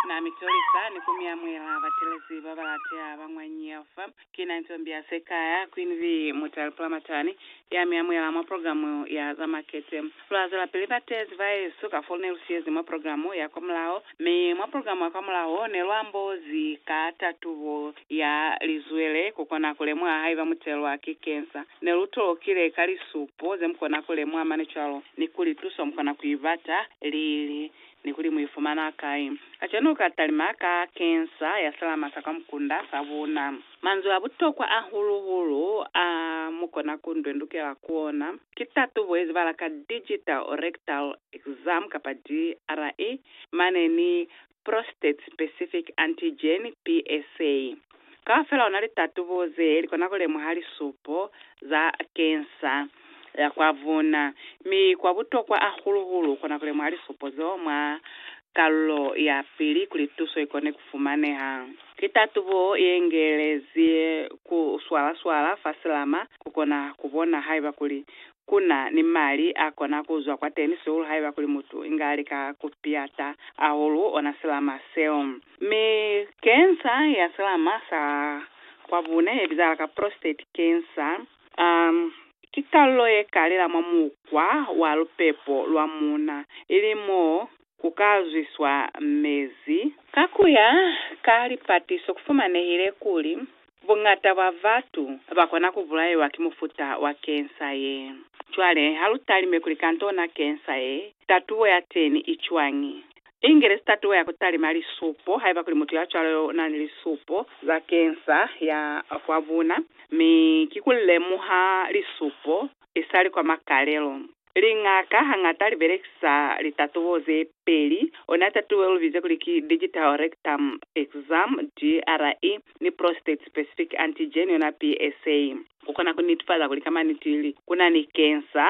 Na mi tolisa ni ku mi amuhela batelezi ba ba lateha ba mwa Nyeau fa. Ki na Ntombi ya Sekaya, Queen Bee Mutale Pulamatani, ya mi amuhela mwa programu ya za makete. Lwa zwelapili ba tezi ba yesu ka fo ne lu siyezi mwa programu ya kwa mulaho, mi mwa programu ya kwa mulaho ne lu ambozi ka tatubo ya lizwele ku kona ku lemuha haiba mu telwa ki cancer. Ne lu tolokile ka lisupo ze mukona ku lemuha mane cwalo, ni kuli tuso mukona ku ibata lili, ni kuli mu ifumana kai. Kacenu lu ka talima ka kensa ya salama sa kwa mukunda sa buuna. Manzwi a butokwa hahulu-hulu a mukona ku ndwendukela ku ona, ki tatubo ye zibala ka Digital Rectal Exam kapa DRE, mane ni Prostate Specific Antigen, PSA, kaufela ona litatubo ze likona kulemuha lisupo za kensa ya kwa vuna, mi kwa butokwa ahulu-hulu ukona kulemuha lisupo zeo mwa kalulo ya pili kuli tuso ikone kufumaneha. Litatubo ye ngelezi ku swala-swala fa silama kukona kubona haiba kuli Ku na ni mali a kona ku zwa kwateni sihulu haiba kuli mutu inga lika ku piata ahulu ona silama seo. Mi kensa ya silama sa kwa bune ye bizahala ka prostate kensa, um, ki kalulo ye kalila mwa mukwa wa lupepo lwa muuna, ili mo ku ka zwiswa mezi. Ka ku ya ka lipatiso ku fumanehile kuli buñata bwa batu ba kona ku bulaiwa ki mufuta wa kensa ye. Cwale ha lu talime kuli kantona kensa ye, tatubo ya teni i cwañi? Ingelezi tatubo ya ku talima lisupo, haiba kuli mutu ya cwalo u na ni lisupo za kensa ya kwa buna, mi ki ku lemuha lisupo isali kwa makalelo. Liñaka hañata li belekisa litatubo ze peli, ona tatubo ye lu bize kuli ki Digital Rectum Exam, DRE, ni Prostate Specific Antigen, yona PSA, ku kona ku netefaza kuli ka maniti li ku na ni kensa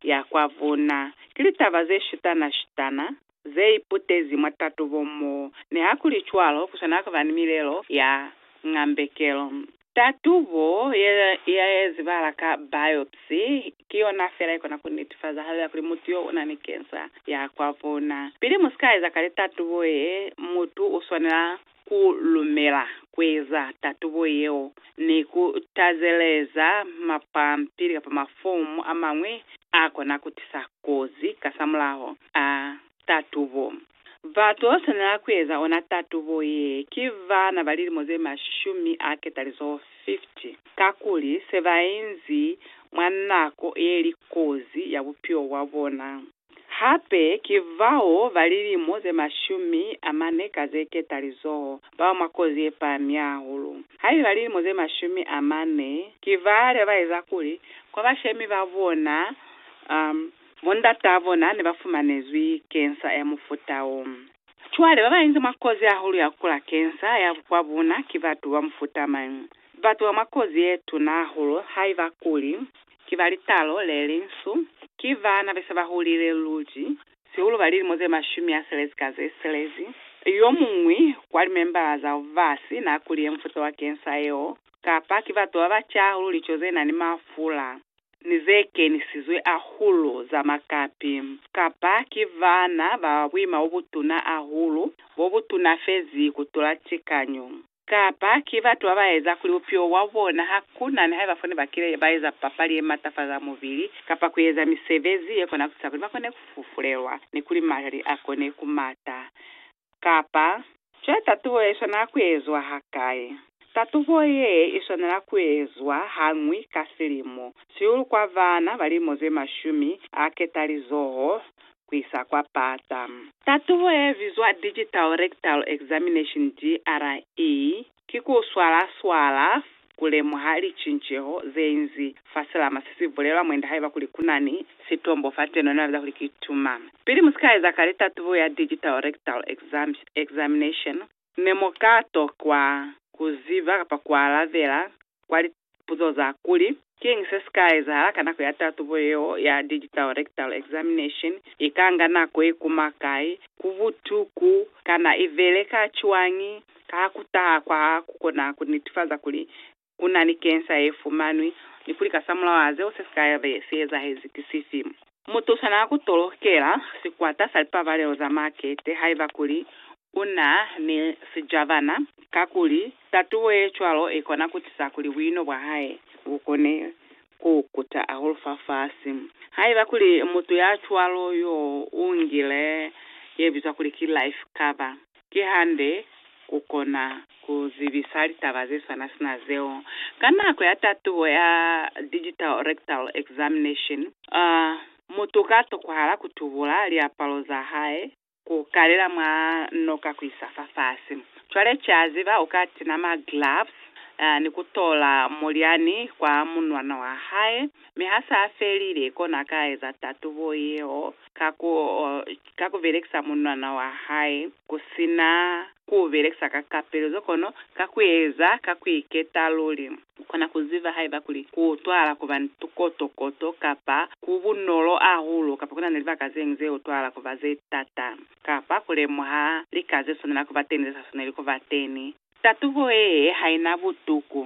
ya kwa vuna. Ki litaba ze shutana-shutana ze iputezi mwa tatubo mo nihakulicwalo ku swanela ku ba ni milelo ya ngambekelo. Tatubo ye ezibala ka biopsy ki yona fela ikona ku netifaza haluya kuli mutu yo una ni kensa ya kwa vuna. Pili mu si ka eza ka litatubo ye, mutu u swanela ku lumela kueza tatubo yeo ni ku tazeleza mapampili kapa mafomu amañwi a kona ku tisa kozi kasamulaho a tatubo. Ba to swanela kueza ona tatubo ye ki bana ba lilimo ze mashumi a ketalizo 50, kakuli se ba inzi mwa nako ye li kozi ya bupilo bwa bona. Hape ki bao ba lilimo ze mashumi a mane ka ze ketalizoho, bao mwa kozi ye pami hahulu. Haiba lilimo ze mashumi a mane ki bale ba eza kuli kwa bashemi ba bona, um, bo ndataa bona ne ba fumanezwi kensa ya mufuta wo. Cwale ba ba inzi mwa kozi hahulu ya kukula kensa ya kwa bona ki batu ba mufuta mañi? Batu ba mwa kozi ye tuna hahulu haiba kuli Ki ba litalo le linsu. Ki bana be se ba hulile luli, sihulu ba lilimo ze mashumi a selezi ka ze selezi. Yo muñwi kwa limembala zao ba si na kuliye mufuta wa kensa yeo, kapa ki batu ba ba ca hahulu lico ze na ni mafula ni ze kenisizwe hahulu za makapi, kapa ki bana ba buima bo butuna hahulu, bo bu tunafezi ku tula tikanyo. Kapa ki batu ba ba eza kuli bupilo bwa bona ha ku na ni haiba fo ne ba kile ba eza papali ye matafaza mubili kapa ku eza misebezi ye kona ku tisa kuli ba kone ku fufulelwa ni kuli mali a kone ku mata. Kapa. Cwale tatubo ye i swanela ku ezwa hakai? Tatubo ye i swanela ku ezwa hañwi ka silimo, sihulu kwa bana ba lilimo ze mashumi a ketalizoho kuisa kwa pata. Tatubo ye bizwa Digital Rectal Examination, DRE, ki ku swala swala ku lemuha licinceho ze inzi fa silama se si bulelwa mwende haiba kuli kunani sitombo fa teno nebabiza kuli ki tuma. Pili musika eza kale tatubo ya Digital Rectal Examination, Ne mu ka tokwa ku ziba kapa ku alabela kwa lipuzo za kuli, Kiñi se si ka ezahala ka nako ya tatubo yeo ya digital rectal examination? I ka nga nako ye kuma kai? Ku butuku? Kana i beleka cwañi? Ka ha ku taha kwa ha ku kona ku nitifaza kuli u na ni kensa ye fumanwi, ni kuli kasamulaho a zeo se si ka be si ezahezi ki sifi. Mutu u swanela ku tolokela sikwata sa lipabalelo za makete haiba kuli u na ni sijabana, kakuli tatubo ye cwalo i kona ku tisa kuli buino bwa hae bu kone ku kuta hahulu fafasi. Haiba kuli mutu ya cwalo yo u ngile ye bizwa kuli ki life cover, Kihande, kukona kuzibisa litaba zeswana sina zeo ka nako ya tatubo ya Digital Rectal Examination. A Mutu ka tokohala kutubula liapalo zahae, kukalela mwa noka kuisa fafasi. Cwale kiaziba uka tina ma gloves ni kutola mulyani kwa munwana wahae, mi hasa felile kona ka eza tatubo yeo. ka ku ka ku belekisa munwana wa hae ku si na ku u belekisa ka kapeluzo kono ka ku eza ka ku iketa luli. U kona ku ziba haiba kuli ku utwahala ku ba ni tukotokoto kapa ku bunolo hahulu kapa ku na ni libaka ze ñwi ze utwahala ku ba ze t'ata kapa ku lemuha lika ze swanela ku ba teñi ze sa swaneli ku ba teñi. Tatubo ye ha i na butuku,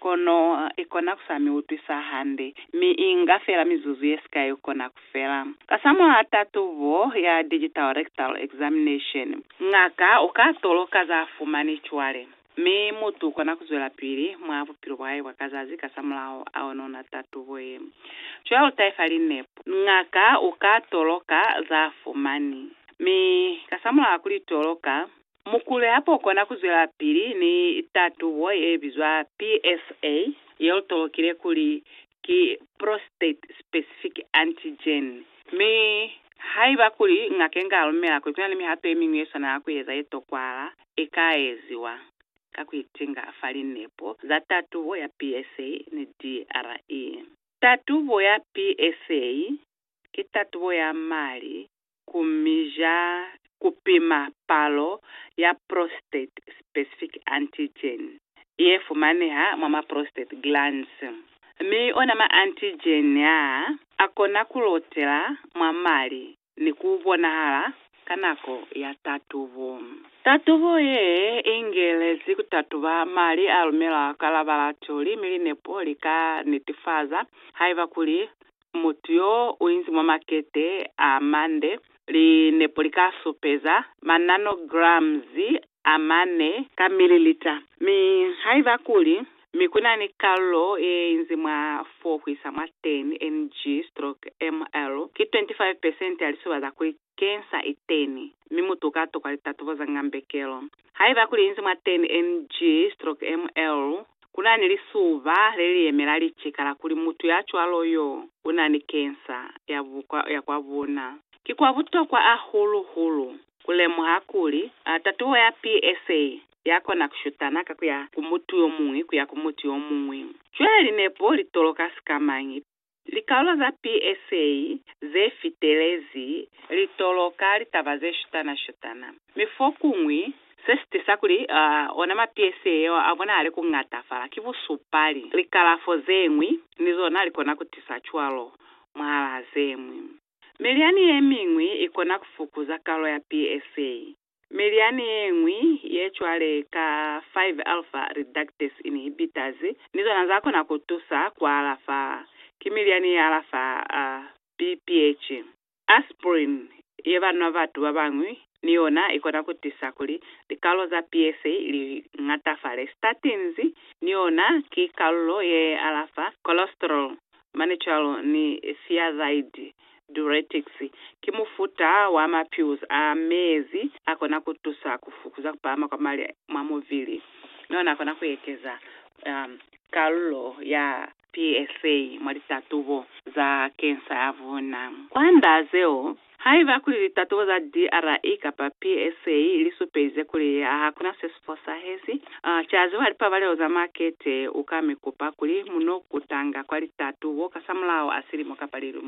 kono i kona ku sa mi utwisa hande, mi i nga fela mizuzu ye sikai ku kona ku fela. Kasamulaho tatubo ya digital rectal examination, ngaka u ka toloka za fumani cwale, mi mutu u kona ku zwelapili mwa bupilo bwa hae bwa ka zazi kasamulaho a onona tatubo ye. Cwale lu taifa linepo. Ngaka u ka toloka za fumani, mi kasamulaho a ku li toloka, Mukulu ya pokona ku zwelapili ni tatubo ye bizwa PSA ye utolokile kuli ki prostate specific antigen. Mi haiba kuli ngaka inga lumela kuli kuna ni mihato ye miñwi ye swanela ku eza ye tokwala, ika eziwa ka ku itinga fa linepo za tatubo ya PSA ni DRE. Tatubo ya PSA ki tatubo ya mali ku mija ku pima palo ya prostate specific antigen ye fumaneha mwa ma prostate glands, mi ona ma antigen a a kona ku lotela mwa mali ni ku bonahala ka nako ya tatubo. Tatubo ye ingelezi ku tatuba mali a lumelwa ka labalatoli mi linepo li ka nitifaza haiba kuli mutu yo u inzi mwa makete a mande, linepo li ka supeza mananograms a mane ka mililita. Mi haiba kuli mi ku na ni kalulo ye inzi mwa 4 ku isa mwa 10 ng stroke ml, ki 25 pesente ya lisuba za kuli Kensa iteni, mi mutu uka tokwa litatubo za ngambekelo. Haiba kuli inzi mwa 10 ng stroke ml, kuna ni lisuba leliyemela licika la kuli mutu ya cwalo yo una ni kensa ya ya kwa buna. Ki kwa butokwa ahulu hulu kulemuha kuli tatubo ya PSA ya kona kushutana ka kuya ku mutu yomuñwi kuya ku mutu yomuñwi. Cwale linepo litoloka sikamañi Likaulo za PSA ze fitelezi li toloka litaba ze shutana-shutana, mi fokuñwi se si tisa kuli ona ma PSA yeo a bonahale ku ñatafala ki busupali. Likalafo ze ñwi ni zona li kona ku tisa cwalo mwahalaa ze ñwi. Milyani ye miñwi i kona ku fukuza kalo ya PSA, Mi lyani yeñwi ye cwale ka 5 alpha reductase inhibitors ni zona za kona ku tusa ku alafa. Ki milyani ye alafa BPH. Aspirin ye ba nwa batu ba bañwi ni yona i kona ku tisa kuli likalo za PSA li ñatafale. Statins ni yona ki kalulo ye alafa cholesterol mane cwalo ni thiazide, diuretics, ki mufuta wa ma pills a mezi a kona ku tusa ku fukuza ku pahama kwa mali mwa muvili, mi ona kona ku ekeza kalulo ya PSA mwa litatubo za cancer ya vuna. Ku anda zeo, Haiba kuli litatubo za DRI kapa PSA li supelize kuli ha ku na se si fosahezi, ca ziwa lipabalelo za makete, u ka mi kupa kuli mu no kutanga kwa litatubo kasamulaho a silimo kapa lilimo.